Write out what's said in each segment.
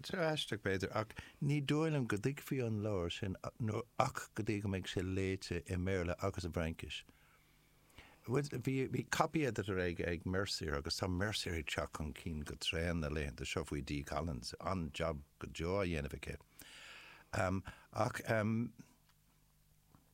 Tír aisteach, b'fhéidir, ach ní dóigh liom go dtuigfí an leabhar sin nó go dtí go mbeidh sé léite i mBéarla agus i bhFraincis. Bhí copy editor ag Mercier agus tá Mercier ag teacht chun cinn go tréan na laethanta seo faoi Dee Collins, an-jab go deo á dhéanamh aici. Ach.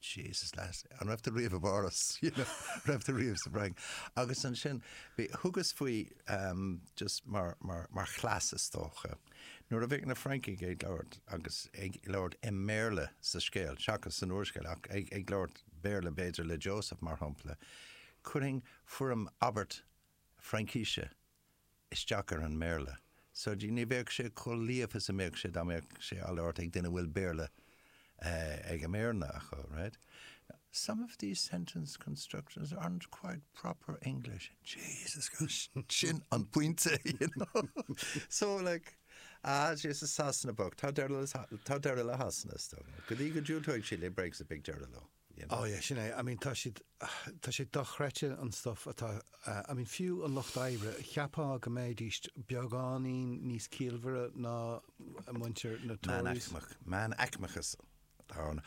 Jesus lads, an raibh tú riamh i bPáras? You know, raibh tú riamh sa bhFrainc? Agus ansin bhí thugas faoi em, just mar, mar, mar chleas is dócha. Nuair a bheadh na Francaigh ag labhairt agus ag labhairt i mBéarla sa scéal, seachas san úrscéal, ach ag, ag labhairt Béarla b'fhéidir le Joseph mar shampla, cuirfinn foirm abairte Fraincise isteach ar an mBéarla. So ní bheadh sé chomh líofa is a bheadh sé dá mbeadh sé á labhairt ag duine a bhfuil Béarla ón mbroinn acu, right? Some of these sentence constructions aren't quite proper English. Jesus Christ! Sin an pointe, you know? So like, ah, Jesus, Sasana bocht, tá deireadh le Sasana, is dóigh liom. Go dtí go diúltóidh siad le Brexit beidh deireadh leo. Oh yeah, sin é. I mean tá siad, tá sé dochreidte an stuff atá, I mean fiú an lucht oibre, cheapfá go mbeidís beagáinín níos ciallmhaire ná muintir na Tories. Meánaicmeachas atá ann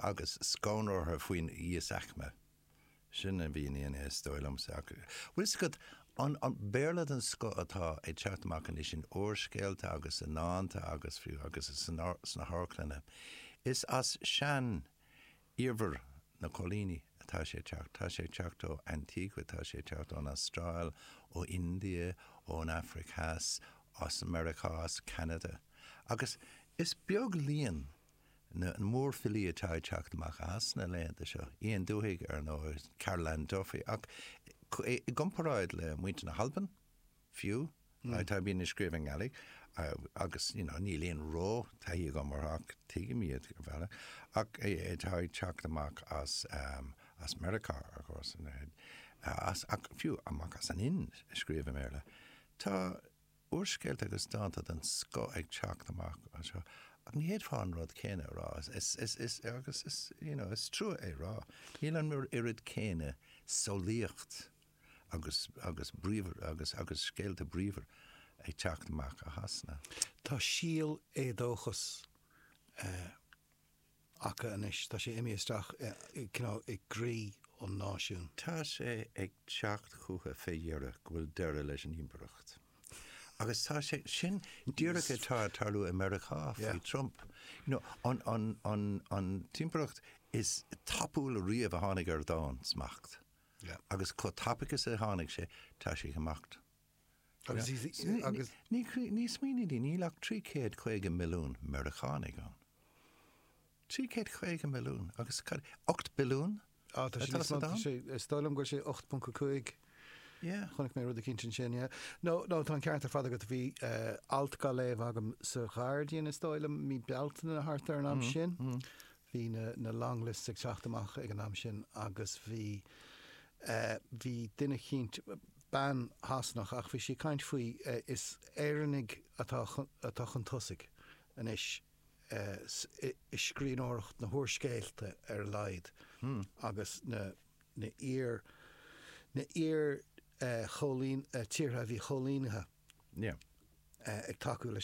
agus scanradh orthu faoin íosaicme. Sin a bhíonn ann is dóigh liomsa ach an bhfuil 'fhios agat, an Béarla den scoth atá ag teacht amach anois in úrscéalta agus i ndánta agus fiú sna hamharclanna, is as sean- Iarmhar na coilíní atá sé ag teacht. Tá sé ag teacht ó Antigua, tá sé ag teacht ón Astráil, ó India, ón Afraic Theas, as Meiriceá, as Ceanada. Agus is beag líon mórfhilí atá ag teacht amach as Sasana na laethanta seo. Ian Duhig, ar ndóigh, Carol Ann Duffy, ach i gcomparáid le muintir na hAlban, fiú, atá bíonn ag scríobh i nGàidhlig agus you know níl aon ró taithí agam orthu ach tuigim iad ar bhealach, ach tá ag teacht amach as as Meiriceá ar chor ar son ar fhad, as ach fiú amach as an Ind ag scríobh i mBéarla. Tá úrscéalta agus dánta den scoth ag teacht amach anseo ach ní fhéadfá an rud céanna a rá is is is is agus is you know is trua é a rá, níl an oiread céanna samhlaíocht agus agus bríomhar agus agus scéalta bríomhar ag teacht amach ó Shasana. Tá síol éadóchas eh acu anois, tá sé imithe isteach eh you know i gcroí an náisiún. Tá sé ag teacht chucu fé dheireadh go bhfuil deireadh leis an impireacht. Agus tá sé sin díreach ag tarlú i Meiriceá faoi Trump. You know an an an an impireacht is tapúla riamh a tháinig ar domhan-smacht. Agus chomh tapaidh is a tháinig sé, tá sé ag imeacht. Smaoinigh, níl ach 350 milliún Meiriceánaigh ann. 350 milliún agus cad, 8 billiún atá sa domhan? Is dóigh liom go bhfuil sé 8.5. Chonaic mé rud eicínt ansin. Nó tá an ceart ar fad agat, bhí alt gá léamh agam sa Ghairdian, is dóigh liom, mí Bealtaine nó thart ar an am sin, Bhí na long lists ag teacht amach ag an am sin agus bhí bhí duine eicínt, bean Sasanach ach bhí sí ag caint faoi is Éireannaigh atá atá chun tosaigh anois i scríbhneoireacht na n-úrscéalta ar a laghad agus na na iar na iar chóilín tíortha a bhí coilínithe ag tacú leis